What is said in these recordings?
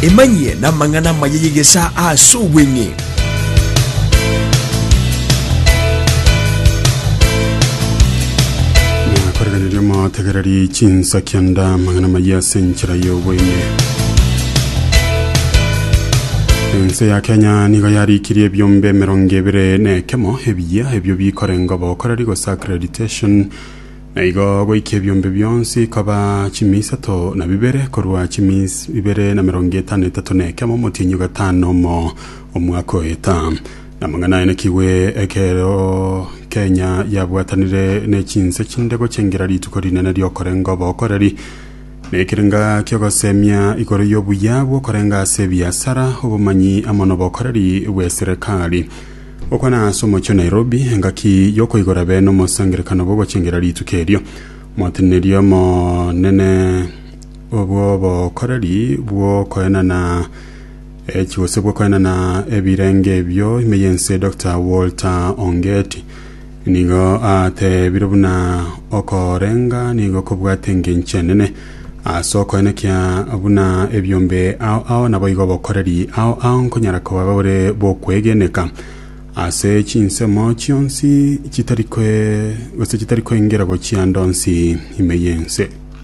Emanyie namang'ana amaya y'egesaa ase obweng'e. nakorereria motegererie chinsa kianda amang'ana maya ase enchera y'obweng'e ense ya kenya nigo yarikirie ebiombe emerongo ebere na ekemo ebiya ebio bikorenga obokoreri gose accreditation Na igo goika ebiombe bionsi koba chimia isato na bibere, korwa chimia ibere na merongo etano na etato na ekemo omotienyi o gatano na omo omwaka oeta. Na amang'ana ainekigwe ekero Kenya yabwatanire ne chinse chinde gochengera rituko rinene ri'okorenga obokoreri, na ekerenga ki'ogosemia igoro y'obuya bw'okorenga ase ebiasara, obomanyi amo nobokoreri bw'eserekari. Gokwana ase omochie o Nairobi, engaki y'okoigora be nomosangerekano bw'ogochengera rituko erio. Moteneneri omonene bw'obokoreri bw'okoenana echi gose bw'okoenana ebirenge ebio ime y'ense Doctor Walter Ongeti, Nigo ateebire buna okorenga nigo kobwate engencho enene. Ase okoenekia buna ebiombe ao ao naboigo obokoreri ao ao nkonyara koba bore bokwegeneka ase chinsemo chionsi chitari kwe gose chitari koengera gochia ando nsi ime y'ense.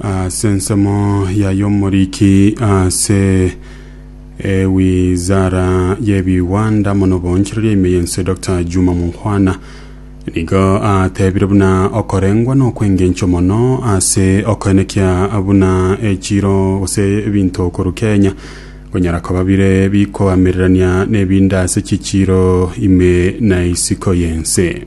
Ase ensemo ya y'omoriki ase ewizara y'ebigwanda mono obonchereria ime y'ense Dr. Juma Mukhwana nigo atebire buna okorengwa n'okwengencho mono ase okoenekia buna echiro gose ebinto okoru Kenya konyara koba bire bikoamererania n'ebinde ase chichiro ime na isiko y'ense.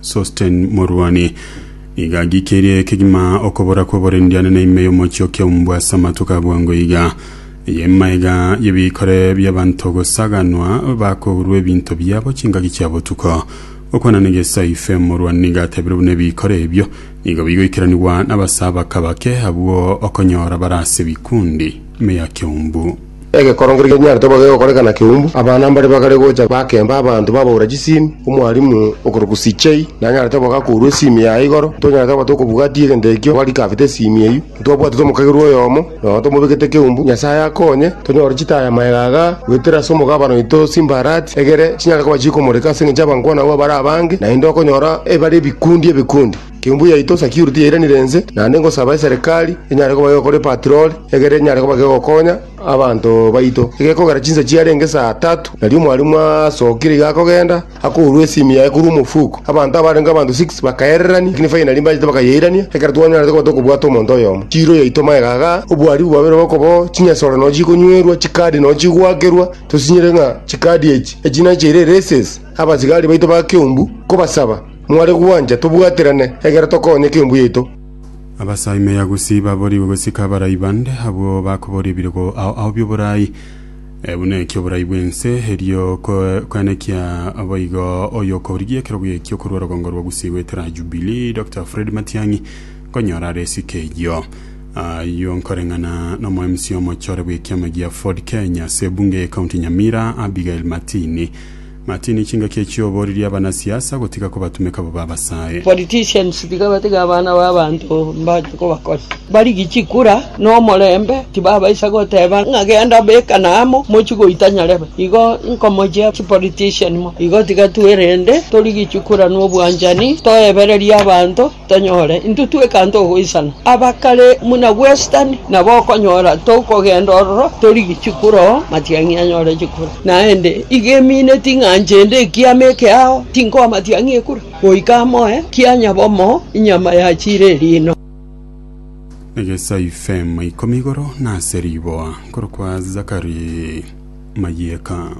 Sosten morwani nigo agikirie kegima okobora kw'oborendiane na ime y'omochie o Keumbu ase amatuko a bwango iga. Y'emaega y'ebikore bi'abanto gosaganwa bakourwa ebinto biabo chingaki chia botuko. Gokwana na Gesaife, morwani nigo atebire buna ebikore ebio nigo bigoikeranigwa n'abasee abake-bake abwo okonyora bare ase ebikundi ime ya Keumbu. Egekorogo keria genyarete koba gegokoreka na keumbu, abana mbare bagare gocha bakemba abanto babaura chisimi. Omwalimu okorokwa CJ nanyarete koba gakourwa esimi yaye igoro. Ntonyarete koba tokobwatia egento ekio bari kabete esimi eyio. Ntitwabwatete omokagerwa oyomo nonya tomobekete keumbu. Nyasaye akonye tonyore chitaya maega aga goetera ase omogabane oito Simbarati egere chinyare koba chikomoreka ase engencho y'abankwana abwo bare abange, naende okonyora ebare ebikundi ebikundi. Timbu yaito security yairanire inse, naende ngosaba eserekari enyare koba gekora epatroli, egere enyare koba gegokonya abanto baito. Egekogera chinsa chiarenge saa tatu, nario mwarimu asokire iga akogenda, akourwa esimi yaye korwa omofuko. Abanto abarenge abanto six bakaererania, lakini finally mbachete bakayeirania, ekero twanyarete koba tokobwata omonto oyomo. Chiiro yaito magega igaa, obwaribu bwabeire obo okoboo, chinyesore noo chikonywerwa, chikadi noo chigoakerwa, tosinyire ng'a chikadi echi, echi nachiire races, abasigari baito ba Keumbu, kobasaba. Mware gwancha tobwaterane, egera tokonyeke embu yaito. Abasaimea gusii baborigwe gosika abarai bande, abwo bakoboria ebirogo ao ao bi'oborai, eh, buna eki oborai bw'ense, erio ko- koenekia boigo oyokorigia ekerogo ekio korwa orogongo rwa gusii goetera Jubilee, Doctor Fred Matiang'i, nkonyora are esike eyio. Ayio nkoreng'ana nomo MC omochore bw'ekiama gia Ford Kenya ase ebunge y'ecounty Nyamira, Abigail Matini. Martini chingaki echio oboririe abanasiasa gotiga kobatumeka bobe abasae. Politicians tiga batege abana babanto mbache kobakora barigi chikura nomorembe tibabaisa goteba ng'a genda bekana amo mochie goita nyarebe igo nkomochia chipolitician mo igo tiga twerende torigi chikura nobwanchani toebererie abanto. Tonyore intwe twekanta ogoisana abakare buna bwesitani, nabo okonyora tokogenda ororo torigi chikuro, matiang'i anyore chikuro. Naende iga emine ting'ancha ende ekiama eke ao, tinkoa matiang'i ekura, goika amoe kia nyabomo inyama yachiire eriino. Egesaifema ikomi igoro nase riboa nkorokwa Zakari Mayeka.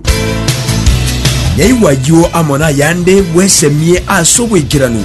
Naigwa ayio amo nayande bwesemie ase obwaikeranu.